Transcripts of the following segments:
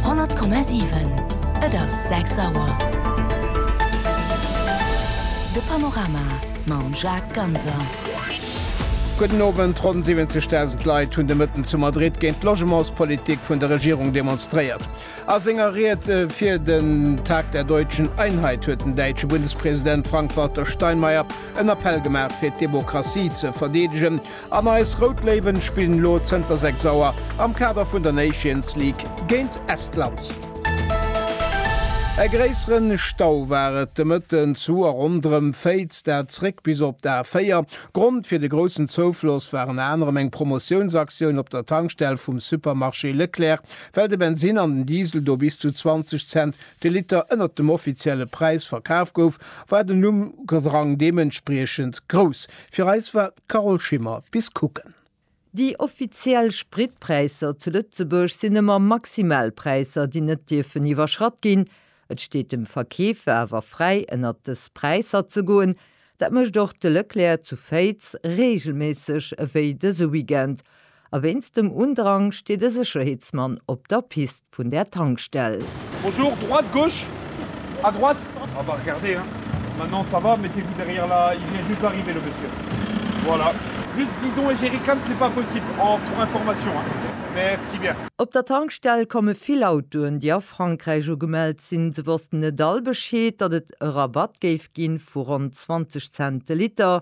100,7. Et ass 6 Auer. De Panorama mam Jacques Ganser. Gudden Owend. Ronn 70.000 Leit hunn de Mëtten zu Madrid géint d'Logementspolitik vun der Regierung demonstréiert. A senger Ried fir den Tag der Deutschen Einheit huet den däitsche Bundespresident Frank-Walter Steinmeier en Appell gemaach fir d'Demokratie ze verdeedegen. An eis Rout Léiwen spillen elo zënter 6 Auer am Kader vun der Nations League géint Estland. E gréisseren Stau war et de Mëtten zu a ronderëm Féiz, dat zréck bis op d'A4. Grond fir de groussen Zoufloss war ënner anerem eng Promotiounsaktioun op der Tankstell vum Supermarché Leclerc, well de Bensinn an den Diesel do bis zu 20 Cent de Liter ënnert dem offizielle Präis verkaf gouf, war den Umdrang deementspriechend grouss. Fir eis war d'Carole Schimmer. Bis kucken. Déi offiziell Spritpräisser zu Lëtzebuerg sinn ëmmer Maximalpräisser, déi net dierfen iwwerschratt ginn. Et steet dem Verkeefer awer fräi, ënnert dës Präisser ze goen. Dat mécht och de Leclerc zu Féiz reegelméisseg, ewéi dëse Weekend. A wéinst dem Undrang steet e Sécherheetsmann op der Pist vun där Tankstell. Bonjour, droite, gauche? À droite? Ah bah regardez hein, maintenant ça va, mettez-vous derrière là, il vient juste d'arriver le monsieur. Voilà. Juste bidon et jerrycan c'est pas possible en pour information hein. Merci bien. Op der Tankstell komme vill Autoen, déi a Frankräich ugemellt sinn. Se wossten net all Bescheed, datt et e Rabatt géif gi vu ronn 20 Cent de Liter.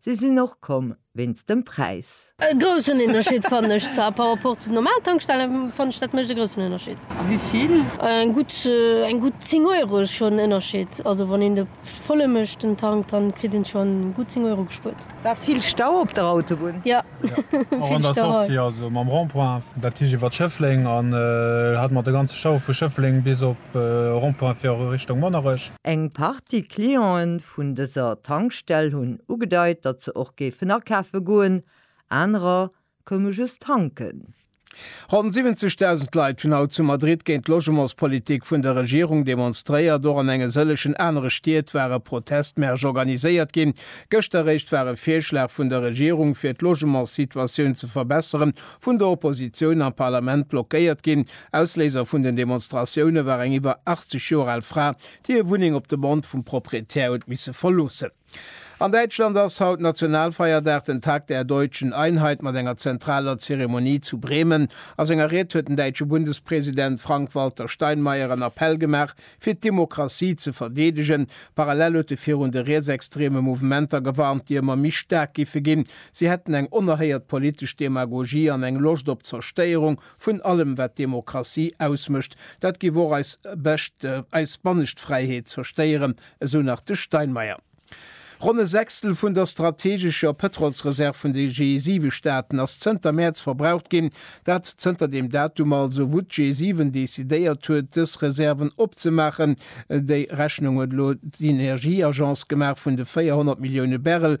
Si sinn och komm wéinst dem Präis. E groussen Ënnerscheed fannen ech zwar par rapport zu den normalen Tankstellen, fannen ech dat mécht e groussen Ënnerscheed. A wéi vill? Eng gutt, eng gutt 10 Euro ass schonn en Ënnerscheed. Also wann een de volle mécht den Tank, dann kritt een schonn gutt 10 Euro gespuert. War vill Stau op der Autobunn? Jo, vill Stau hei. Jo, och an der Sortie, also mam Rond-point dat Tiischt iwwert Schëffleng an hat mer de ganze Stau vu Schëffleng bis op Rond-point fir Richtung Monnerech. Eng Partie Clientë vun dëser Tankstell hunn ugedeit, datt se och géifen akafe goen, anerer koume just tanken. Ronn 70.000 Leit hunn haut zu Madrid géint d'Logementspolitik vun der Regierung demonstréiert. Och an enge sëllegen anere Stied ware Protestmärsch organiséiert ginn. Gëschter eréischt war e Virschlag vun der Regierung, fir d'Logementssituatioun ze verbesseren, vun der Oppositioun am Parlament blockéiert ginn. Ausléiser vun den Demonstratioune war eng iwwer 80 Joer al Fra, déi hir Wunneng op Demande vum Proprietär huet misse verloossen. An Däitschland ass haut Nationalfeierdag, den Tag der deutschen Einheit, mat enger zentraler Zeremonie zu Bremen. A senger Ried huet den däitsche Bundespresident Frank-Walter Steinmeier en Appell gemaach, fir d'Demokratie ze verdeedegen. Parallel huet e virun de rietsextreme Mouvementer gewarnt, déi ëmmer méi staark géife ginn. Si hätten eng onerhéiert politesch Demagogie an eng Loscht op Zerstéierung Vun allem wat Demokratie ausmécht, dat giff och eis bescht, eis bannescht Fräiheet zerstéieren, esou nach de Steinmeier. Ronn e Sechstel vun der strategescher Pëtrolsreserv vun de G7-Staaten ass zënter Mäerz verbraucht ginn. Dat zënter deem Datum also, wou d'G7 decidéiert huet, dës Reserven opzemaachen. Déi Rechnung huet elo d'Energieagence gemaach, vun de 400 Millioune Barrel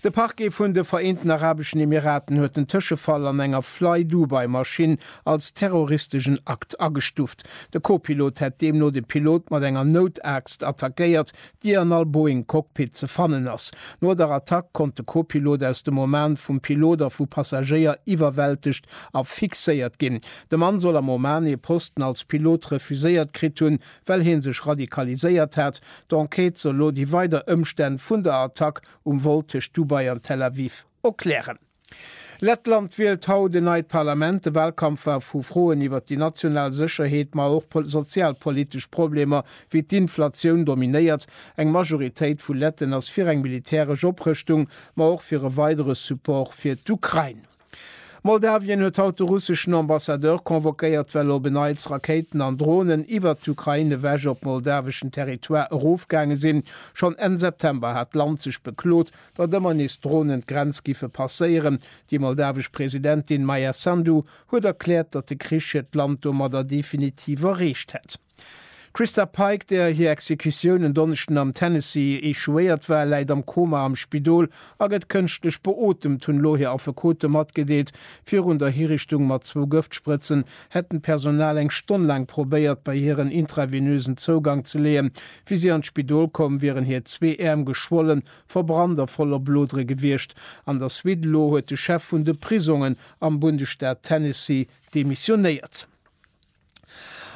De Parquet vun de Vereenten Arabeschen Emiraten huet den Tëschefall an enger Flydubai-Maschinn als terroristeschen Akt agestuft. De Co-Pilot hätt deemno de Pilot mat enger Noutaargst attackéiert, déi an all Boeing-Cockpit ze fannen ass. No der Attack konnt de Co-Pilot aus dem Oman vum Pilot a vu Passagéier iwwerwältegt a fixéiert ginn. De Mann soll am Oman ee Posten als Pilot refuséiert kritt hunn, well hie sech radikaliséiert hat. D'Enquête soll lo déi weider Ëmstänn vun der Attack um Vol tëscht Dubai an Tel Aviv opklären. Lettland wielt haut en neit Parlament. De Walkampf war vu Froen iwwer déi national Sécherheet, ma och sozialpolitesch Problemer wéi d'Inflatioun dominéiert. Eng Majoritéit vu Letten ass fir eng militäresch Oprëschtung, ma och fir e weidere Support fir d'Ukrain. Moldawien huet haut de russeschen Ambassadeur convoquéiert, well op en Neits Rakéiten an Dronen iwwert d'Ukrain ewech op moldaweschen Territoire erofgaange sinn. Schonn Enn September hat d'Land sech beklot, datt ëmmer nees Dronen d'Grenz giffe passéieren. Déi moldawesch Presidentin Maia Sandu huet erkläert, datt de Krich hiert Land domadder definitiv erreecht hätt. D'Christa Pike, där hir Exekutioun en Donneschden am Tennessee echouéiert war, läit am Koma am Spidol a gëtt kënschtlech beotemt, hunn elo hir Affekote matgedeelt. Virun der Hiriichtung mat zwou Gëftsprëtzen hätten d'Personal eng Stonn laang probéiert, bei hir en intravenösen Zougang ze leeën. Wéi si an d'Spidol koum, wieren hir zwee Äerm geschwollen, verbrannt a voller Blodere gewiescht. An der Suite elo huet de Chef vun de Prisongen am Bundesstaat Tennessee demissionéiert.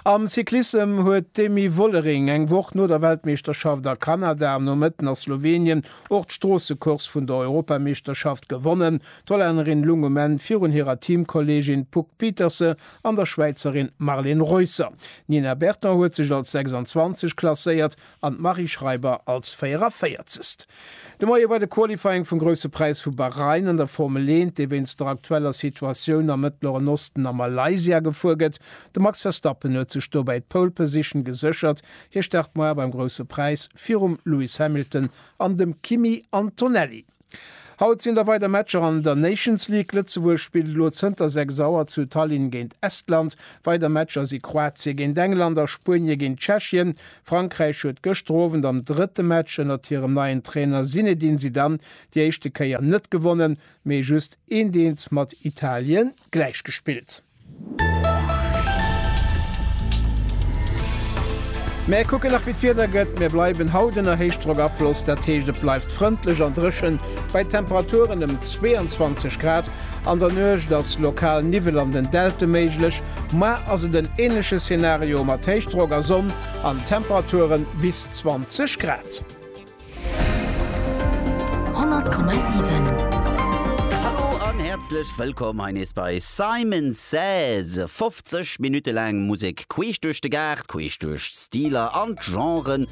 Am Cyclissem huet d'Demi Vollering eng Woch no der Weltmeeschterschaft a Kanada am Nomëtten a Slowenien och d'Stroossecourse vun der Europameeschterschaft gewonnen. D'Hollännerin lung um Enn virun hirer Teamkolleegin Puck Pieterse an der Schwäizerin Marlen Reusser. D'Nina Berton huet sech als 26 klasséiert an d'Marie Schreiber als 44. De Moie bei de Qualifying vum Grousse Präis vu Bahrain an der Formel 1, dee wéinst der aktueller Situatioun am Mëttleren Osten a Malaysia gefuer gëtt. De Max Verstappen huet sech dobäi d'Pole Position geséchert. Hie start moie beim Grousse Präis virum Lewis Hamilton an dem Kimi Antonelli. Haut sinn da weider Matcher an der Nations League. Lëtzebuerg spillt elo zënter 6 Auer zu Tallinn géint Estland. Weider Matcher si Kroatie géint England a Spuenie géint Tschechien. Frankräich huet gëschter Owend am drëtte Match ënnert hirem neien Trainer Zinedine Zidane déi éischte Kéier net gewonnen, mee just eenteent mat Italien gläichgespillt. Mär kucken nach wéi d'Wieder gëtt, mir bleiwen haut ënner Héichdrockafloss, dat heescht et bleift frëndlech an dréchen bei Temperaturen ëm 22 Grad. An der Nuecht ass lokal Niwwel an den Delte méiglech, mar ass et en änleche Szenario mat Héichdrock a Sonn an Temperature bis 20 Grad. Hallo an häerzlech wëllkomm hei nees bei Simon Says. 50 Minutte laang Musek queesch duerch de Gaart, queesch duerch d'Stiler an d'Genren,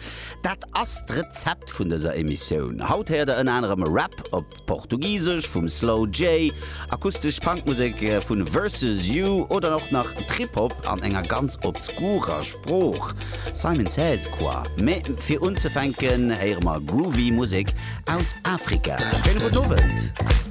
dat ass d'Rezept vun dëser Emissioun. Haut héiert der ënner anerem Rap op Portugisesch vum Slow J, akustesch Punkmusek vu Versus You oder och nach Trip-Hop an enger ganz obskurer Sprooch, Simon Says quoi? Mee fir unzefänken héiere mer groovy Musek aus Afrika. Schéine gudden Owend.